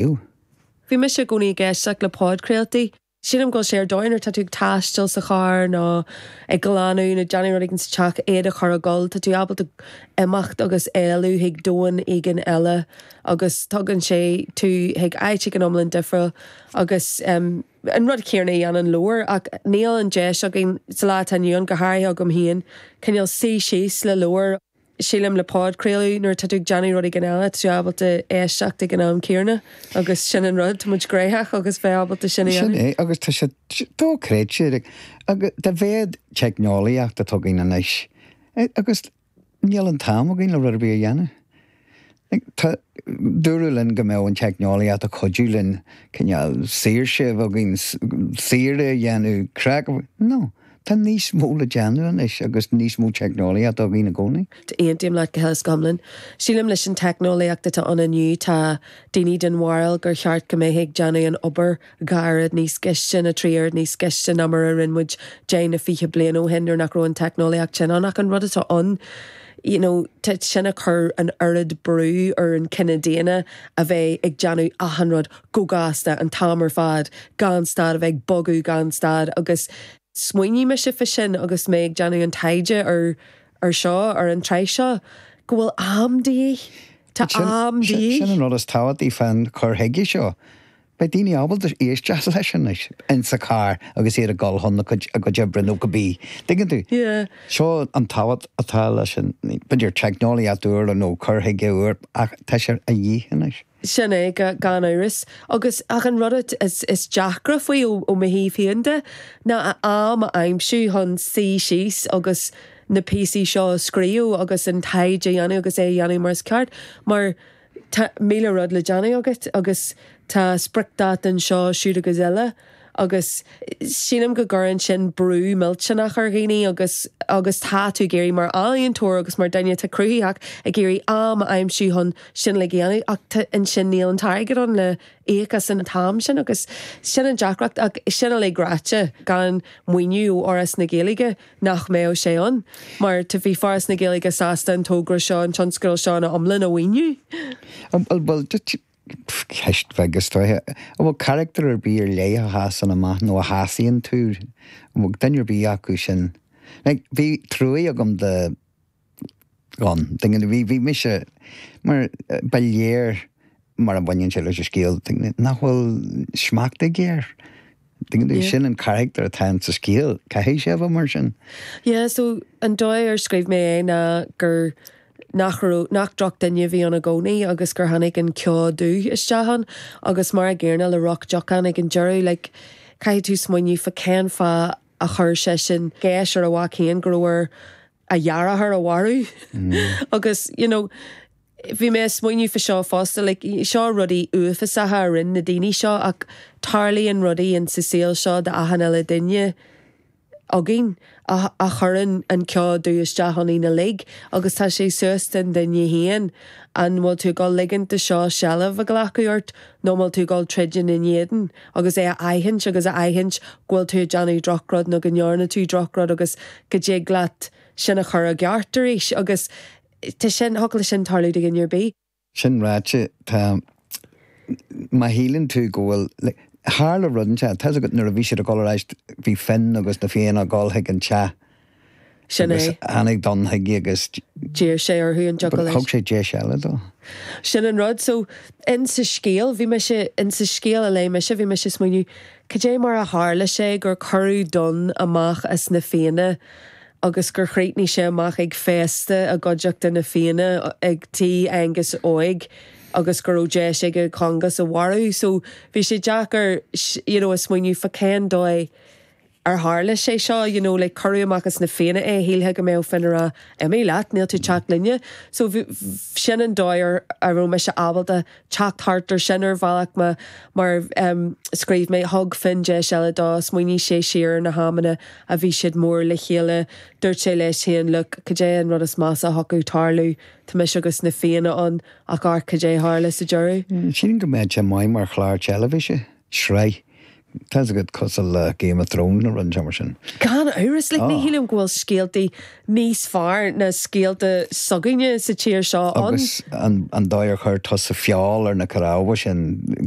Ew. Bhí mise i gcónaí ag éisteacht le podchraoltaí. Sílim go bhfuil sé ar dóigh nuair atá tú ag taisteal sa charr nó ag glanadh nó ag déanamh rud éigin sa teach, iad a chur ag gabháil, tá tú ábalta imeacht agus éalú chuig domhan éigin eile agus tugann sé tú chuig áit éigin iomlán difriúil agus an rud céanna a dhéanann leabhar ach níl an deis againn sa lá atá inniu ann, go háirithe agam féin, cineál suí síos le leabhar. sílim, le podchraoladh nuair atá tú ag déanamh rud éigin eile, tá tú ábalta éisteacht ag an am céanna agus sin an rud, tá muid gnoitheach agus bheith ábalta sin a dhéanamh. Sin é agus tá sé dochreidte dá mhéad teicneolaíocht atá againn anois agus níl an t-am againn le rud ar bith a dhéanamh. Dúradh linn go mbeadh an teicneolaíocht ag cuidiú linn cineál saoirse a bheith againn, saoire a dhéanamh, craic, no, tá níos mó le déanamh anois agus níos mó teicneolaíochta againn i gcónaí. Aontaím leat go huile is go hiomlán. Sílim leis an teicneolaíocht atá ann inniu tá daoine den bharúil gur cheart go mbeifeá ag déanamh an obair dhá uair níos gaiste, nó trí uair níos gaiste ná mar a rinne muid deich nó fiche bliain ó shin nuair nach raibh an teicneolaíocht sin ann. Ach an rud atá ann, you know, tá sin ag cur an oiread brú ar an chine daonna a bheith ag déanamh achan rud go gasta, an t-am ar fad, gan stad, a bheith ag bogadh gan stad agus smaoinigh mise faoi sin agus mé ag déanamh an taighde ar ar seo, ar an tsraith seo, go bhfuil am de dhíth. Tá am de dhíth. Sin an rud is tábhachtaí fán chur chuige seo, Beidh daoine ábalta éisteacht leis anois in sa charr agus iad ag dul chun a gcuid, a gcuid oibre nó cibé. dtuigeann tú? Yeah. Seo an tábhacht atá leis an, b'fhéidir teicneolaíocht úr nó cur chuige úr ach tá sé de dhíth anois. Sin é, gan amhras. Agus, ach an rud atá is, is deacra faoi ó, ó mo thaobh féin de, ná a am a aimsiú chun suí síos agus na píosaí seo a scríobh agus an taighde a dhéanamh agus é a dhéanamh mar is ceart mar, Tá míle rud le déanamh agat agus tá spriocdháta anseo, siúd agus eile agus sílim go gcuireann sin brú millteanach ar dhaoine agus agus tá tú ag iarraidh, mar ealaíontóir agus mar dhuine atá cruthaitheach, ag iarraidh am a aimsiú chun sin uilig a dhéanamh ach ansin níl an t-airgead ann le íoc as an t-am sin agus sin an deacracht ach sin uilig ráite, gan maoiniú ó Fhoras na Gaeilge, nach mbeadh sé ann mar tá bhí Foras na Gaeilge sásta an togra seo, an tionscadal seo ina iomlán a mhaoiniú. Bhuel, ceist bheag is dóigh. An bhfuil carachtar ar bith ar leith a sheasann amach nó a shásaíonn tú? An bhfuil duine ar bith acu sin? Bhí truaighe agam do. ann. Bhí mise mar, ba léir mar a bhaineann sé leis an scéal, nach bhfuil smacht aige air. Sin an carachtar atá ann sa scéal, caithfidh sé a bheith mar sin. Yeah so an dóigh ar scríobh mé é ná gur, nach raibh, nach drochdhuine a bhí ann i gcónaí agus gur tháinig an ceo dubh isteach ann agus mar a gcéanna le Roc Deocán ag an deireadh, like caithfidh tú smaoineamh fá cén fáth a chuir seisean geis ar a mhac féin go raibh air a dheartháir a mharú agus you know bhí mé ag smaoineamh fá seo fosta like seo rudaí uafásacha a rinn na daoine seo ach tarlaíonn rudaí in sa saol seo d'achan uile duine againn a a chuireann an ceo dubh isteach ionainn uilig agus tá sé suas den duine féin an bhfuil tú ag dul ligint dó seo seilbh a ghlacadh ort nó an bhfuil tú ag dul troid ina éadan agus é a aithint agus a aithint go bhfuil tú ag déanamh drochrud nó go ndearna tú drochrud agus go dtig leat sin a chur i gceart arís agus tá sin, thiocfadh le sin tarlú do dhuine ar bith. Sin ráite, tá, má shíleann tú go bhfuil, tharla rud anseo, tá's agat nuair a bhí siad ag dul ar ais, bhí Fionn agus na Fianna ag dul chuig an teach, Sin é. Agus tháinig Donn chuige agus. d'iarr sé orthu an dtiocfadh leis. Thug sé deis eile dó. Sin an rud. So, in sa scéal, bhí mise, in sa scéal a léigh mise, bhí mise ag smaoineamh, cad é mar a tharla sé gur cuireadh Donn amach as na Fianna agus gur chríochnaigh sé amach ag féasta i gcuideachta na Fianna ag tigh Aengus Óig agus go raibh deis aige Congus a mharú? So, bhí sé deacair, you know, a smaoineamh fá cén dóigh. Ar tharla sé seo, you know, like, cuireadh amach as na Fianna é, shílfeá go mbeadh Fionn ag rá, imigh leat, níl tú ag teacht linne. So bhí, b'shin an dóigh ar a raibh mise ábalta teacht thart ar sin ar bhealach mar, mar em, scríobh mé, thug Fionn deis eile dó, smaoinigh sé siar ar na hamanna a bhí siad mór le chéile, dúirt sé leis féin, look, cad é an rud is measa a thiocfadh tarlú, tá mise agus na Fianna ann ach amharc cad é tharla sa deireadh. Sílim go mbeadh sé maith mar chlár teilifíse. Sraith. Tá's agat, cosúil le Game of Thrones nó rud inteacht mar sin. Gan amhras, like ní shílim go bhfuil scéaltaí níos fearr ná scéalta s'againne sa tír seo ann. Agus an an dóigh ar chuir tusa feoil ar na cnámha sin.